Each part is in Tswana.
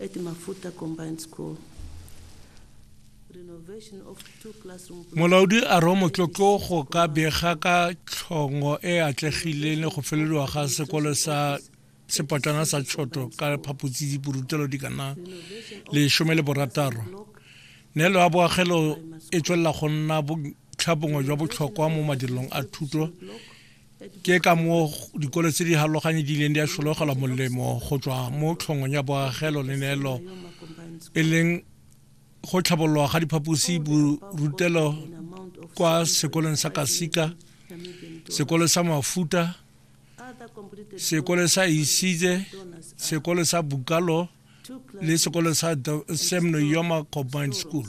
eti mafuta combined school. Renovation of two classroom blocks. molaodi a re o motlotlo go ka bega ka tlhongo e e atlegileng le go felelwa ga sekolo sa sepotlana sa tshoto ka phaphotsi diporutelo di kana lesome le borataro neelo ya boagelo e tswelela go nna botlhabongwe jwa botlhokwa mo madirelong a thuto ke ka moo dikolo tse di haloganye di ileng di a shologelwa molemo go tswa mo tlhongong ya boagelo le neelo e leng go tlhabololwa ga diphaposi borutelo kwa sekolong sa kasika sekolo sa mafuta sekolo sa isize sekolo sa bukalo le sekolo sa semno yoma combined school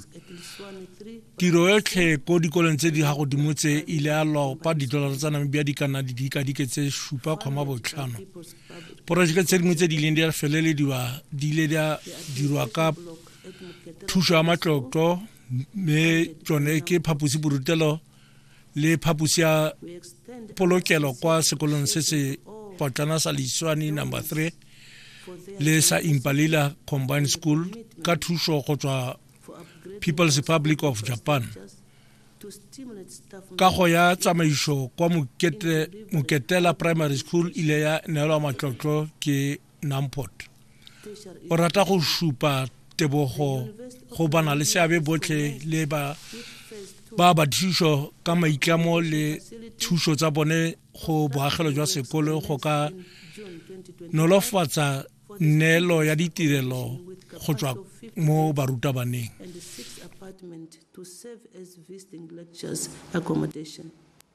tiro yotlhe ko dikolong tse di ga godimo tse e ile ya lopa didolara tsa namibia di ka nna di dikadike tse supa kgoma botlhano porojeke tse dingwe tse di ileng di a felelediwa di ile di a dirwa ka thuso ya matlotlo mme tsone ke phaposiborutelo le phaposi ya polokelo kwa sekolong se se potlana sa leiswane number 3 le sa impalila combined school ka thuso go tswa people's republic of japan kago ya tsamaiso kwa moketela primary school ile ya neelwa matlotlo ke Namport o rata go šupa tebogo go bana le seabe botlhe le ba ba ba thušo ka maitlamo le thušo tsa bone go boagelo jwa sekolo go ka nolofatsa neelo ya ditirelo go tswa mo barutabaneng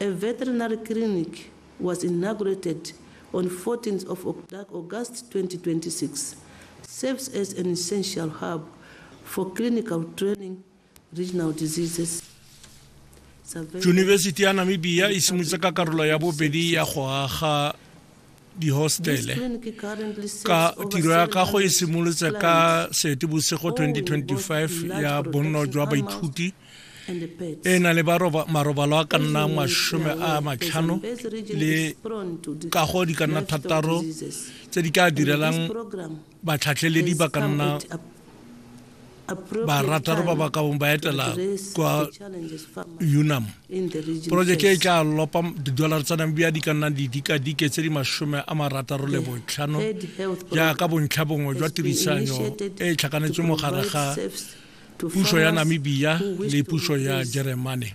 A veterinary clinic was inaugurated on 14th of August 2026, serves as an essential hub for clinical training regional diseases. Yunibesiti ya Namibia e simolotse ka karolo ya bobedi ya go aga dihostele ka tiro ya kago e simolotse ka seetebosego 2025 ya bonno jwa baithuti e na le marobalo a ka nna masome a matlhano le kago di ka nna thataro tse di ka direlang batlhatlheledi ba ka nna barataro ba ba kabong ba etela kwa unam porojeke e tla lopa didolara tsa namibia di ka nna didikadike tse di masome a marataro le botlhano jaaka bontlha bongwe jwa tirisanyo e e tlhakanetswe mogare ga puso ya namibia le puso ya jeremane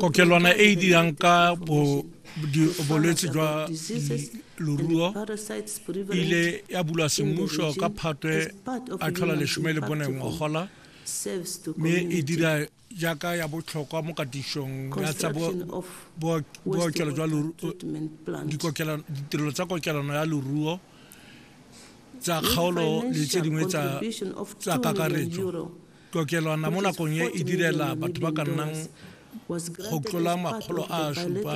kokelwana e e dirang ka bolwetse jwa loruo ile ya bulwa semmuso ka phatwe a tlhola lesome le bone ngogola mme e dira jaaka ya botlhokwa mo katisong ya tsa bookelo jwa ditirelo tsa kokelano ya loruo tsa kgaolo le tse dingwe tsa kakaretso Kokelwana mo nakong e e direla batho ba ka nnang go tlola makgolo a a supa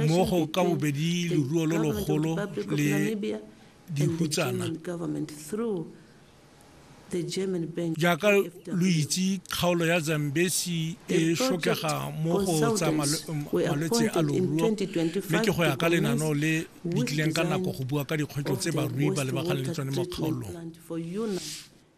mo go ka bobedi leruo lo logolo le dihutsana jaaka lo itse kgaolo ya zambesi e shokega mo go tsa malwetse a loruo mme ke go ya ka lenaneo le di tlileng ka nako go bua ka dikgwetlho tse barui ba lebaganeng le tsone mo kgaolong